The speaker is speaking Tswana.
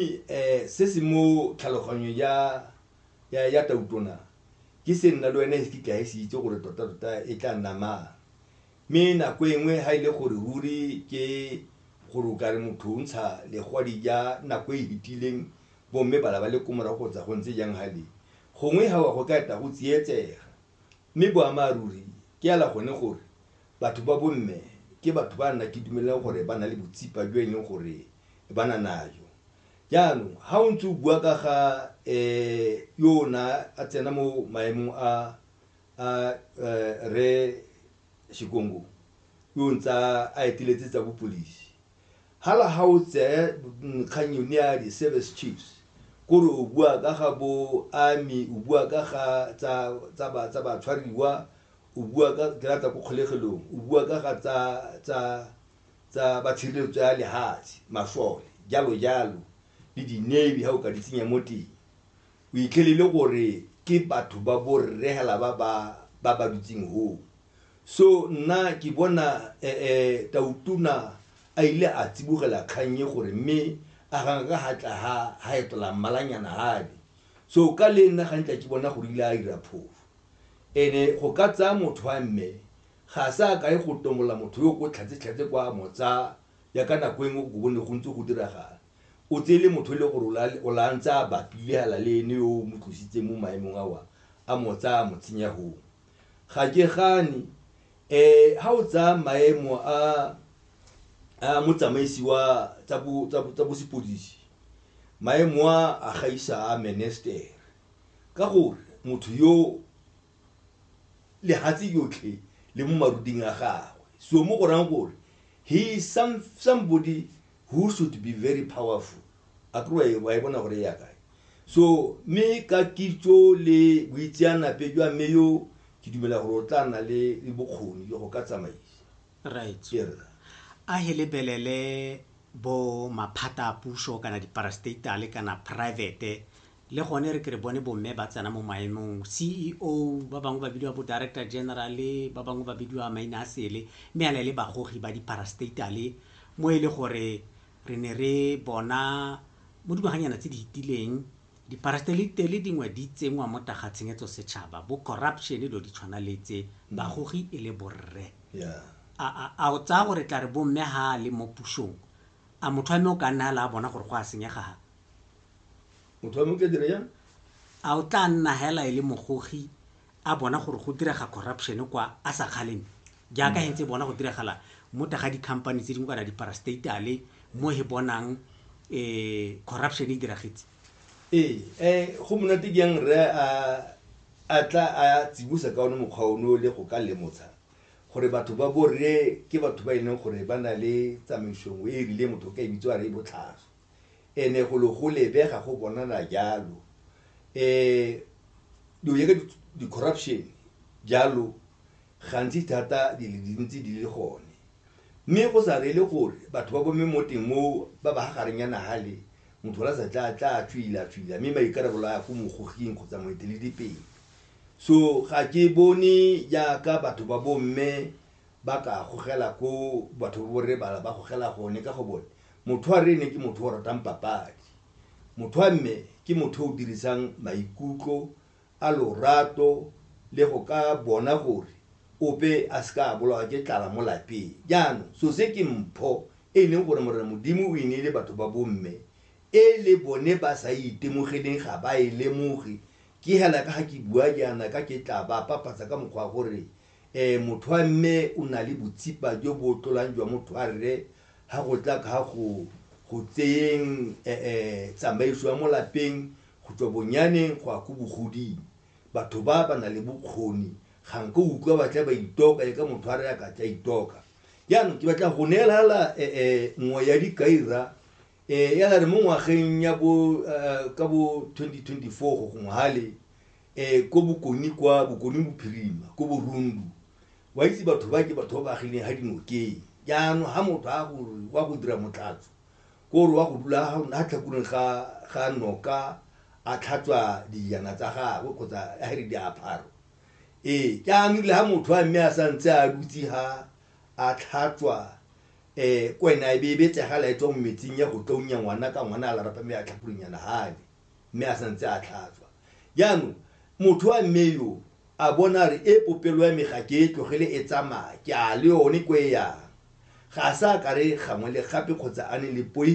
Eh, se se mo tlhaloganyong ya ya ya tautona ke se nna le wena e se kitla e se itse gore tota tota e tla nna mang mme nako e nngwe ha e le gore ruri ke gore o kare motho o ntsha legwadi ja nako e hitileng bomme bala ba le ko morago kgotsa go ntse jang hale gongwe ha wa go ka eta go tsietsega Mme boammaaruri ke hela gone gore batho ba bomme ke batho ba nna ke dumelang gore ba na le botsipa jo e leng gore ba na najo. Jaanong ha o ntse o bua ka ga um yo o na a tsena mo maemong a a Rre Shikongo yo ntse a eteletse tsa bopodisi, Hala ha o tseye kgang yone ya di-service chiefs kore o bua ka ga bo army o bua ka ga tsa tsa ba tsa batshwariwa o bua ka tlata ko kgolegelong o bua ka ga tsa tsa tsa batshireletso ya lehatshe masole jalo jalo le di-navy ha o ka di tsenya mo teng o itlhelele gore ke batho ba borre hela ba ba ba ba dutseng hoo So nna ke bona eh, Tautona a ile a tsibogela kgang e gore mme a ganga ka hatla ha ha etela mmalanyana hale so ka le nna ga ntla ke bona gore ile a ira phofu ene go ka tsaya motho wa mme ga sa ka e go tomola motho yo ko tlhatse tlhatse kwa mo tsaya ya ka nako engwe go bone go ntse go diragala o tsele motho e le gore o la- o la ntse a bapile hala le ene yo o mo tlositseng mo maemong a wa a mo tsaya a mo tsenya hoo ga ke gane um eh, ga o tsaya maemo a a motsamaisi wa tsa bosepodisi maemo a a gaisa a menester ka gore motho yo lehatshe yotlhe le mo maruding a gagwe so mo go rang gore he is some, somebody who should be very powerful a kry wa e bona gore e ya kae so mme ka kitso le boitseanape jwa mme yo ke dumela gore o tla nna le le bokgoni jwa go ka tsamaisa right ke re a he lebelele bo maphata a puso kana diparastatale kana private Le gone re ke re bone bomme ba tsena mo maemong, CEO, ba bangwe ba bidiwa bo-director general, ba bangwe ba bidiwa maina a sele, mme yana e le bagogi ba di-parastatale, mo e le gore re ne re bona mo dingwaganyana tse di fetileng di-parastatale dingwe di tsenngwa mo taga tshenyetso setšhaba, bo corruption, dilo di tshwana le tse, bagogi e le borre. A, a, a o tsaya gore tla re bomme ha a le mo pusong, a motho wa mme o ka nna fela a bona gore go a senyega fa? motho wa motla dira jang a o tla nna hela e le mogogi a bona gore go direga corruption kwa a sa kgaleng jaaka hentse bona go diragala mo taga di-company tse dingwe kana diparastatale mo he bonang um corruption e diragetse ee eh, go monate jang rre a a tla a tsibosa ka one mokgwa ono le go ka lemotsha gore batho ba borre ke batho ba e leng gore ba na le tsamaiso nngwe e e rileng motho o ka e bitso a re e botlhaswa and-e go le go lebega go bonala jalo um dilo jaaka di-corruption jalo gantsi thata di le dintsi di le gone mme go sa reele gore batho ba bome mo teng moo ba ba gareng ya nagale motho la sa tla tla tswila tswila mme maikarabelo a ya ko mogoging kgotsa moeteledipele so ga ke bone jaaka batho ba bomme ba ka gogela ko batho ba borre bala ba gogela gone ka go bone motho wa rene ke motho o ratang papadi motho wa mme ke motho o dirisang maikutlo a lorato le go ka bona gore ope a se ka a bolawa ke tlala mo lapeng jaanong so se ke mpho e leng gore morena modimo o e neile batho ba bomme e le bone ba sa e itemogeleng ga ba e lemoge ke hela ka ga ke bua jaana ka ke tla ba papatsa ka mokgwa gore Ee, motho wa mme o na le botsipa jo bo tlolang jwa motho wa rre ha go tla ka go go tseyeng eh, eh, tsamaiso ya mo lapeng go tswa bonyaneng go ya ko bogoding. Batho ba ba na le bokgoni ga nke o utlwa ba tla ba itoka le ka motho wa rre a ka tla itoka. Jaanong ke batla go neelala eh, eh, nngwe ya dikaira eh, ya la re mo ngwageng ya bo eh, ka bo 2024 go gongwe hale um ko bokoni kwa bokoni bophirima ko borundu wa itse batho ba ke batho ba ba agileng ga dinokeng jaanong ga motho a gore wa go dira motlatso ko gore wa go dula ga tlhakureng ga noka a tlhatswa dijana tsa gagwe kgotsa a re diaparo ee jaanong le ga motho a mme a sa ntse a dutse ga a tlhatswa um ko ene a e be e betsegala e tswa mo metsing ya go tlonya ngwana ka ngwana a larapa mme a tlhakureng yana gane mme a santse a tlhatswa jaanong motho wa mme yo a bona re e popelo ya me ga ke e tlogele e tsamaya ke a le yone ko e yang ga a sa ka re gangwe le gape kgotsa a ne le poi